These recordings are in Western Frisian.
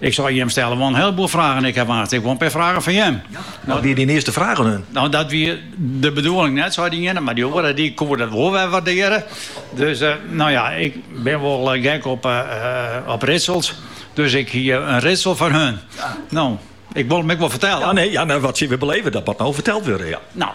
Ik sei, Jim stelle wol in hiele boel fragen, ik haw ek wol in pear fragen foar jim. Wat wie dyn earste fraach oan him? No, dat wie de bedoeling net, sei dy iene, mar dy oare dy koe dat wol wer waardearje. Dus no ja, ik bin wol gek op riedsels, dus ik hie in riedsel foar him. No, ik wol him ek wol fertelle. Ja, nee, ja, wat sy wer beleve, dat moat no ferteld wurde, ja. No,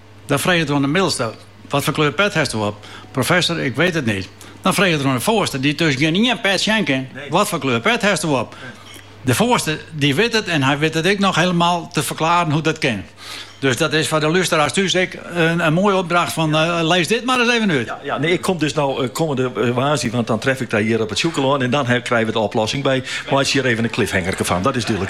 Dan freget er oan de middelste, Wat foar kleur pet hasto op? Professor, ik weet het niet. Dan freget er oan de foarste, dy't dus gjin ien pet sjen kin, Wat foar kleur pet hasto op? De foarste dy wit it en hy wit it ek noch helemaal te ferklaren hoe't dat kin. Dus dat is foar de lústeraars thús ek in moaie opdracht fan lis dit mar ris even út. Ja, nee, ik kom dus no kommende woansdei, want dan tref ik dy hjir op it Sjûkelân en dan krije we de oplossing by. Meitsje hjir even in cliffhangerke fan, dat is dúdlik.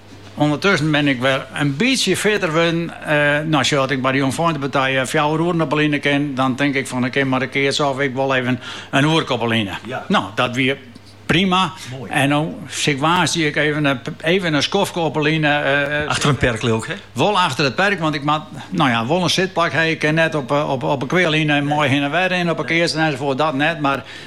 Undertussen bin ik wer in bytsje fitter wurden. No sjoch, dat ik by de Jongfeintepartij fjouwer oeren op 'e line kin. Dan tink ik fan, ik kin mar in keatsje of ik wol even in oerke op 'e line. No, dat wie prima. En no sil ik woansdei ek even in skoftke op 'e line. Achter it perk leau ik, hè? Wol achter it perk, want ik moat wol in sitplak hawwe. Ik kin net op 'e kwealine mei hin en wer rinnen op 'e keatsen ensafoarts, dat net. Mar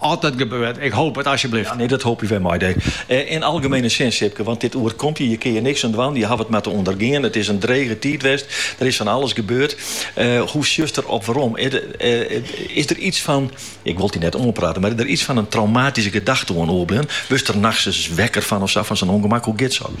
As dat gebeurt, ik hoop it asjebleaft. Ja, nee, dat hoopje we mei dy. Yn algemene sin, Sipke, want dit oerkomt je, dêr kinne je niks oan dwaan, je hawwe it mar te ûndergean. It is in drege tiid west, der is fan alles gebeurd. Hoe sjochst der op werom? Is der iets fan, ik wol it dy net oanprate, mar is der iets fan in traumatyske gedachte oan oerbleaun? Wurdst der nachts ris wekker fan of sa, fan sa'n ûngemak? Hoe giet soks?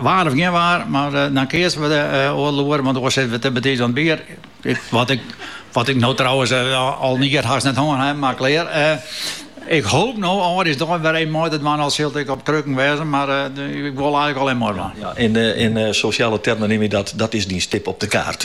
Waar of gjin waar, mar dan keatse we oardel oere, want oars sitte we te betiids oan it bier. Wat ik no trouwens al in jier hast net hân haw, mar klear. Ik hoop no âldjiersdei wer even mei te dwaan, al sil it ek op krukken wêze, mar ik wol eigenlik al even mei dwaan. Ja, yn sosjale termen neame je dat, dat is dyn stip op de kaart.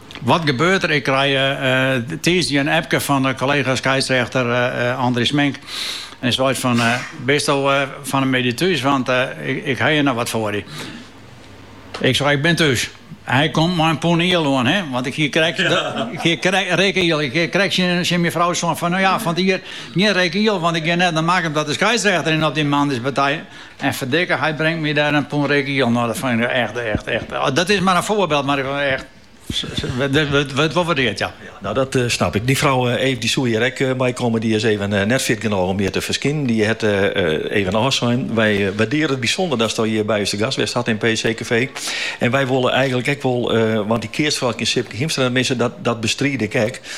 Wat gebeurt der? Ik krije tiisdei in appke fan de kollega skeidsrechter Andries Smink. En hy seit fan, bisto fan 'e middei thús, want ik haw hjir noch wat foar dy. Ik sei, ik bin thús. Hy komt mei in pûn iel oan, hin, want ik hie krekt, rikke iel. Ik hie krekt tsjin myn frou sein fan, no ja, fan 't jier gjin rikke iel, want ik gean net nei Makkum ta te skeidsrechterjen op dy moandeis. En ferdikke, hy bringt my dêr in pûn rikke iel. No, dat fyn ik echt, echt, echt. Dat is mar in foarbyld, mar echt. Wurdt wol waardeard, ja. Nou, dat snap ik. Dyn frou Eve dy soe hjir ek mei komme. Dy is even net fit genôch om hjir te ferskinen. Dy hat even ôfsein. Wy waardearje it bysûnder datsto hjir by ús te gast west hast yn PC-kafee. En wy wolle eigenlik ek wol, want de keatswrâld kin Sipke Hiemstra net misse, dat bestride ik ek.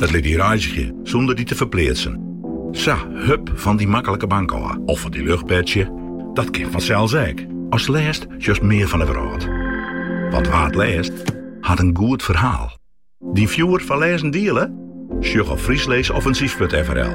It lit dy reizgje sûnder dy te ferpleatsen. Sa, hup fan dy maklike bank ôf of fan dyn luchtbedsje, dat kin fansels ek. Ast lêst sjochst mear fan 'e wrâld. Want wa't lêst, hat in goed ferhaal. Dyn fjoer foar lêzen diele? Sjoch op friesleesoffensief.frl.